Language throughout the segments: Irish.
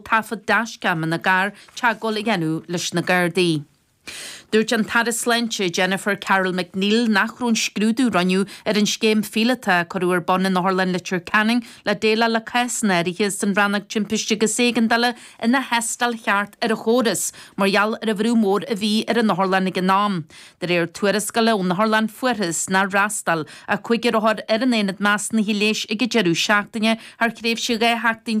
taifead dashcam ina gcarr teagmháil a dhéanamh leis na Gardaí. Dúirt an tAire Sláinte, Jennifer Carroll MacNeill nach raibh an scrúdú a rinneadh ar an scéim phíolótach a cuireadh ar bun in Otharlann Leitir Ceanainn le déileáil le cásanna áirithe san Rannóg Timpiste agus Éigeandála ina thástáil cheart ar an chóras mar gheall ar an bhrú mór a bhí ar an Otharlann ag an am. De réir tuarascála ón Otharlann fuarthas nár fhreastail ach cúigear othar ar an aonad measúnaithe leighis ag an deireadh seachtaine thar thréimhse 12 sheachtain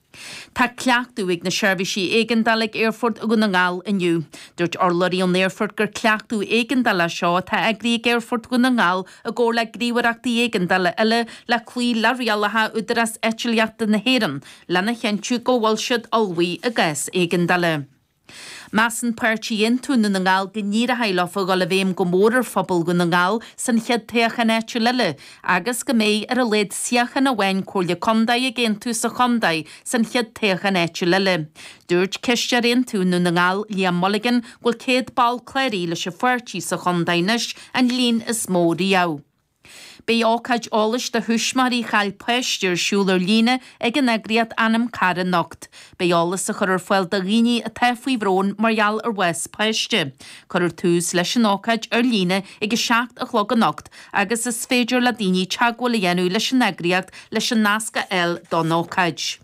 Tá cleachtadh ag na seirbhísí éigeandála ag Aerfort Dhún na nGall inniu. Dúirt urlabhraí ón aerfort gur cleachtadh éigeandála é seo atá eagraithe ag Aerfort Dhún na nGall i gcomhar le gníomhaireachtaí éigeandála eile le cloí le rialacha Údarás Eitlíochta na hÉireann lena chinntiú go bhfuil siad ullmhaithe i gcás éigeandála. Measann Páirtí Aontú Dhún na nGall go n-éireoidh leofa dhul i bhfeidhm go mór ar phobal Dhún na nGall san chéad toghchán áitiúil eile agus go mbeidh ar a laghad suíochán amháin Comhairle Contae ag Aontú sa chontae san chéad toghchán áitiúil eile. Dúirt Cisteoir Aontú Dhún na nGall Liam Mulligan go bhfuil 100 ball cláraithe leis an pháirtí sa chontae anois, an líon is mó riamh. Beidh ócáid eolais do thuismitheoirí a chaill páiste ar siúl ar líne ag an eagraíocht Anam Cara anocht. Beidh eolas á chur ar fáil do dhaoine atá faoi bhrón mar gheall ar bhás páiste. Cuirfear tús leis an ócáid ar líne ag a seacht a chlog anocht agus is féidir le daoine teagmháil a dhéanamh leis an eagraíocht leis an nasc a fháil don ócáid.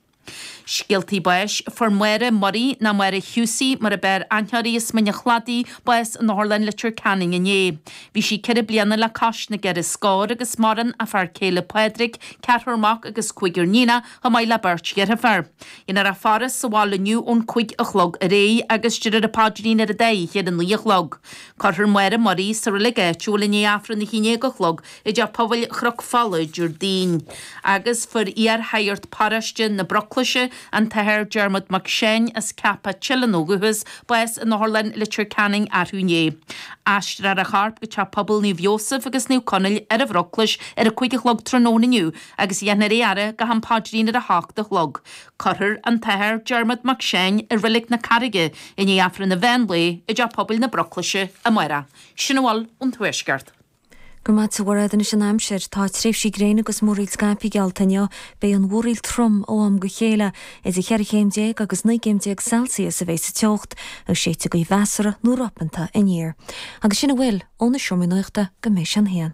Scéaltaí Báis, Fuair Máire Murray, nó Máire Husey mar ab fhearr aithne uirthi as Mín an Chladaigh, bás in Otharlann Leitir Ceanainn inné. Bhí sí ceithre bliana le cois na gceithre scór agus maireann a fear céile Pádraig, ceathrar mac agus cúigear níonach, chomh maith le beirt dheirféar. Dhéanfar í a fhaire sa bhaile inniu ón cúig a chlog ar aghaidh agus déarfar an paidrín an dá oíche ar a naoi a chlog. Cuirfear Máire Murray sa reilig áitiúil i ndiaidh Aifreann a haon déag a chlog i dTeach Pobail Chnoc Fola, Déardaoin, agus fuair iar-shagart paróiste na Broclaise, an tAthair Dermot Mac Seáin as Ceapach, Teileann ó dhúchas, bás in Otharlann Leitir Ceanainn arú inné. Aistreofar a chorp go Teach Pobail Naomh Iósaf agus Naomh Conaill ar an Bhroclais ar a cúig a chlog tráthnóna inniu agus dhéanfar é a fhaire go ham paidrín ar a hocht a chlog. Cuirfear an tAthair Dermot Mac Seáin i Reilig na Carraige i ndiaidh Aifreann an mheán lae i dTeach Pobail na Broclaise amárach. Sin a bhfuil ón Tuaisceart. Go raibh maith agat, a Mhairéad. Anois an aimsir. Tá tréimhsí gréine agus múraíl scaipthe geallta inniu. Beidh an mhúraíl trom ó am go chéile. Idir cheithre chéim déag agus naoi gcéim déag Celsius a bheidh sa teocht, agus séidfidh gaoth mheasartha nó ropanta aniar. Agus sin a bhfuil ó na Seomraí Nuachta go mbeidh sé a haon.